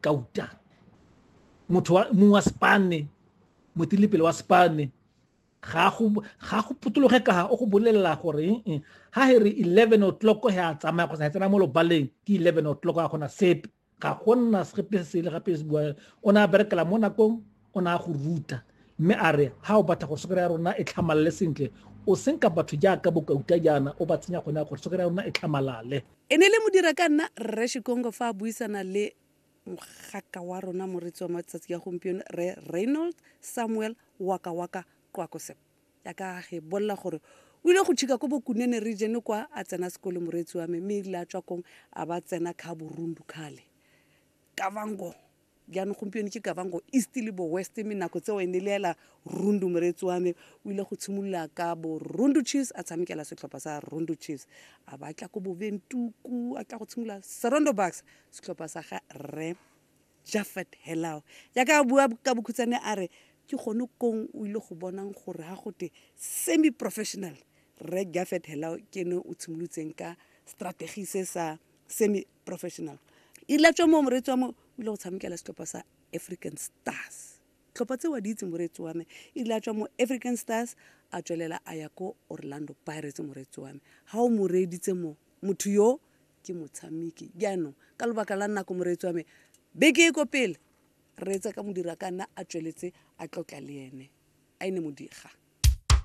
kauta motho wa mong wa spane motilipele wa spane ga go potologe ka o go bolelela gore eh, eh, ha he re 11 o'clock he a tsamaya kgotsa he tsena mo lobaleng ke 11 o'clock a gona sepe ga gonna sepe se le gape se bua o ne a berekela mo nakong o ne a go ruta mme a re ga o batla gore sokere ya rona e tlhamalale sentle o senka batho jaaka bokauta jaana o ba tsenya gone ya gore sokere ya rona e tlhamalale e ne le modira ka nna rre shikongo fa a buisana le mogaka wa rona moretsi wa matsatsi ya gompieno re reynold samuel waka waka qwakosep ya ka ge bolela gore o ile go tšhika ko bokunene region kwa a tsena sekole moreetsi wa me mme ile a tswa kong a ba tsena kha borundu khale ka bangong jaanong gompieno ke kavango east le bo west mme nako tseo e ne le ela rundu moreetsi wa me o ile go tshimolola ka bo rundu chiefs a tshamekela setlhopha sa rundu chiefs a ba tla ko boventuku a tla go tshimolola serondo bucks setlhopha sa ga rre jaffet helao jaaka a bua ka bokhutsane a re ke gone kong o ile go bonang gore ga gote semi professional rre jaffet helao ke ne o tshimolotseng ka strategy se sa semi professional ila tswa mo moreetsi wa mo o ile go tshamekela setlhopha sa african stars tlhopha tse wa di itse moreetsi wa me ile a tswa mo african stars a tswelela a ya ko orlando pirates moreetsi wa me ga o mo reeditse mo motho yo ke motshameki jaanong ka lobaka la nako moreetsi wa me beke e ko pele reetsa ka modira ka nna a tsweletse a tlotla le ene a e ne modiga